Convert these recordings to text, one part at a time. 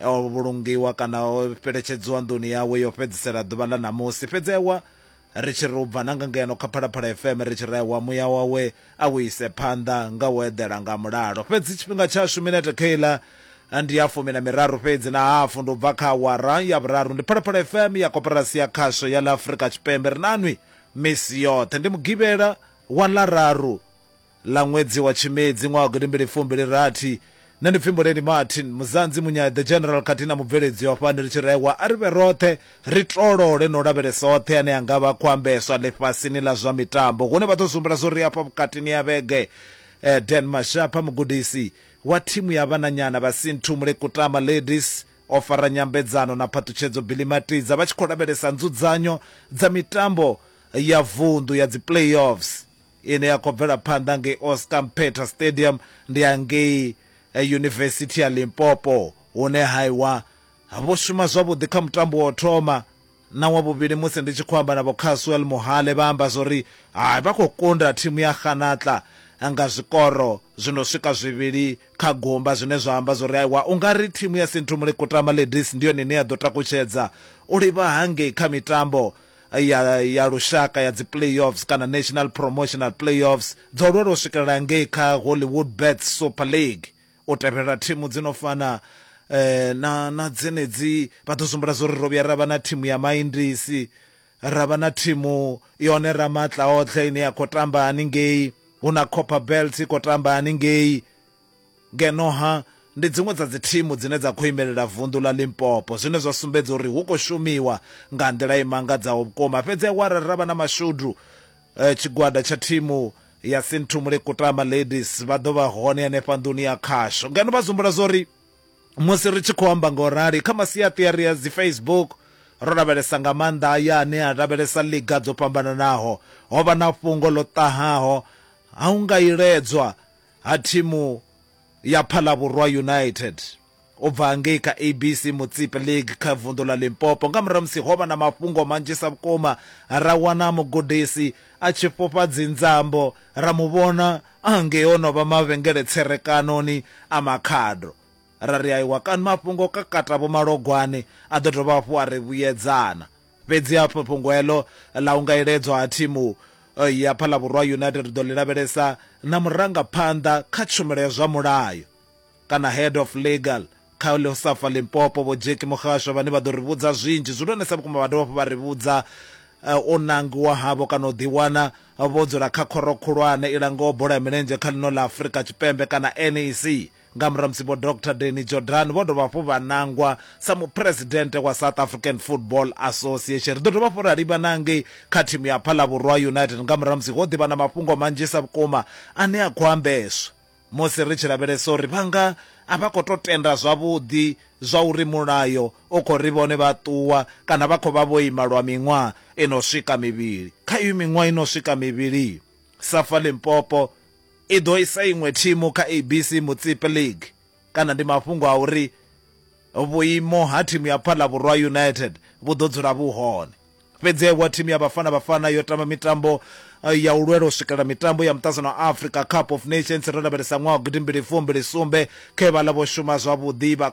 o vhulungiwa kana o fheletshedziwa nḓuni yawe yo fhedzisela ḓuvha ḽa ṋamusi fhedzi ewa ri tshi ri u bva na nga ngeno kha phalaphala fm ri tshi ri ewa muya wawe a u ise phanḓa nga u eḓela nga mulalo fhedzi tshifhinga tshashu minete kheiḽa ndi ya fumi na miraru fhedzi na hafu ndi u bva kha awara ya vhuraru ndi phalaphala fm ya koporasi ya khasho ya ḽa afurika tshipembe ri nanwi misi yoṱhe ndi mugivhela wa ḽararu Ḽa ṅwedzi wa Tshimedzi ṅwaha wa gidimbili fumbili rathi, nṋe ndi pfi Muleni Martin, Muzanzi Munyai the General khathihi na mubveledzi wa fhano ri tshi rehwa a ri vhe roṱhe ri tolole na u lavhelesa oṱhe ane a nga vha a khou ambeswa ḽifhasini ḽa zwa mitambo hune vha ḓo zwi humbula zwo ri hafha vhukatini ha vhege. Dan Mashapha, mugudisi wa thimu ya vhananyana vha Sinthumule Kutama Ladies, o fara nyambedzano na phaṱhutshedzo Billy Matidza vha tshi khou lavhelesa nzudzanyo dza mitambo ya vunḓu ya dzi playoffs. ine ya khou bvela phanḓa ngei Oscar Mphetha Stadium ndi ya ngei eh, Yunivesithi ya Limpopo hune haiwa vho shuma zwavhuḓi kha mutambo wa u thoma na wa vhuvhili musi ndi tshi khou amba na vho Caswell Muhale vha amba zwori hai vha khou kunda thimu ya Kganatla nga zwikoro zwino swika zwivhili kha gumba zwine zwa amba zwori aiwa u nga ri thimu ya Sinthumule Kutama Ladies ndi yone ine ya ḓo takutshedza u livha hangei kha mitambo ya ya lushaka ya dzi playoffs kana national promotional playoffs dzo lwela u swikelela ngei kha hollywood bet super league u tevhelela thimu dzi no fana eh, na na dzenedzi vha ḓo sumbula zwo ri ro vhuya ra vha na thimu ya maindisi ra vha na thimu yone ra matla otlhe ine ya khou tamba haningei hu na copper belt i khou tamba haningei Ngeno ha, ndi dziṅwe dza dzithimu dzine dza khou imelela vunḓu ḽa Limpopo, zwine zwa sumbedza uri hu khou shumiwa nga nḓila i mangadzaho vhukuma. Fhedzi awara ra vha na mashudu, tshigwada tsha thimu ya Sinthumule Kutama Ladies vha ḓo vha hone henefha nḓuni ya khasho ngeno vha zumbula zwo ri, Musi ri tshi khou amba nga u rali, kha masiaṱiari a dzi Facebook, ro lavhelesa nga maanḓa aya ane a lavhelesa liga dzo fhambananaho, ho vha na fhungo ḽo ṱahaho ha u nga iledzwa ha thimu ya Phalabvhurwa United u bva ngei kha ABC Mutsipe League kha vunḓu ḽa Limpopo nga murahu musi ho vha na mafhungo manzhisa vhukuma ra wana mugudisi a tshi fhufha dzinzambo ra mu vhona a ngei o no vha mavhengele tserekanoni a Makhado ra ri aiwa kani mafhungo kakata vho Malogwane a ḓo dovha hafhu a ri vhuyedzana Fhedzi ha fhungo heḽo ḽa u nga iledzwa ha thimu eh, ya Phalabhurwa United ri ḓo ḽi lavhelesa na murangaphanḓa kha tshumelo ya zwa mulayo kana head of legal kha Leosafa Limpopo Vho Jackie Muhasho vhane vha ḓo ri vhudza zwinzhi zwihulwanesa vhukuma vha dovha hafhu vha ri vhudza eh, u nangiwa havho kana u ḓiwana vho dzula kha khoro khulwane i langaho bola ya milenzhe kha ḽino ḽa Afrika Tshipembe kana NEC. Nga murahu ha musi Vho Doctor Danny Jordaan vho dovha hafhu vha nangwa sa Muphuresidennde wa South African Football Association. Ri ḓo dovha hafhu ra livhana ngei kha thimu ya Phalabhurwa United nga murahu ha musi ho ḓi vha na mafhungo manzhisa vhukuma ane a khou ambeswa musi ri tshi lavhelesa uri vha nga a vha khou tou tenda zwavhuḓi zwa uri mulayo u khou ri vhone vha ṱuwa kana vha khou vha vho ima lwa miṅwaha i no swika mivhili. Kha iyo miṅwaha i no swika mivhili, Safa Limpopo I ḓo isa iṅwe thimu kha ABC Motsepe League kana ndi mafhungo a uri vhuimo ha thimu ya Phallavhurwa United vhu ḓo dzula vhu hone. Fhedzi aiwa thimu ya Bafana Bafana yo tamba mitambo ya u lwela u swikelela mitambo ya muṱaṱsano wa Africa Cup of Nations ro lavhelesa ṅwaha wa gidimbili fumbili sumbe khe vhaḽa vho shuma zwavhuḓi vha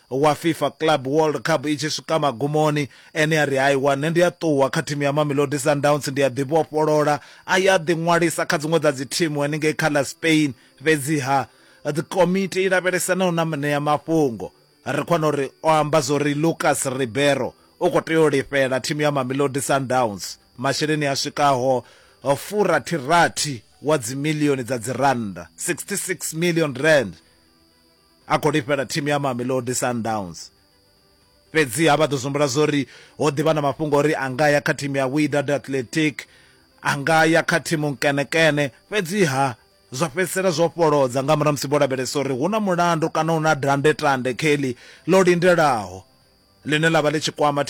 wa Fifa Club World Cup i tshi swika magumoni, ene a ri, Haiwa, nṋe ndi a ṱuwa kha thimu ya Mamelodi Sundowns, ndi a ḓivhofholola. A ya a ḓiṅwalisa kha dziṅwe dza dzithimu henengei kha ḽa Spain. Fhedziha komiti i lavhelesanaho na muṋeamafhungo ri khou wana uri o amba zwa uri Lucas Ribeiro u khou tea u lifhela thimu ya Mamelodi Sundowns masheleni a swikaho furathi-rathi wa dzimiḽioni dza dzirannda, 66 million rands. A khou lifhela thimu ya Mamelodi Sundowns. Fhedziha vha ḓo dzumbula zwo ri ho ḓi vha na mafhungo o ri a nga ya kha thimu ya Wydad Athletic, a nga ya kha thimu nkenekene, fhedziha zwa fhedzisela zwo fholodza nga murahu ha musi vho lavhelesa uri hu na mulandu kana hu na dandetande, Kelly, ḽo lindelaho ḽine ḽa vha ḽi tshi kwama thimu.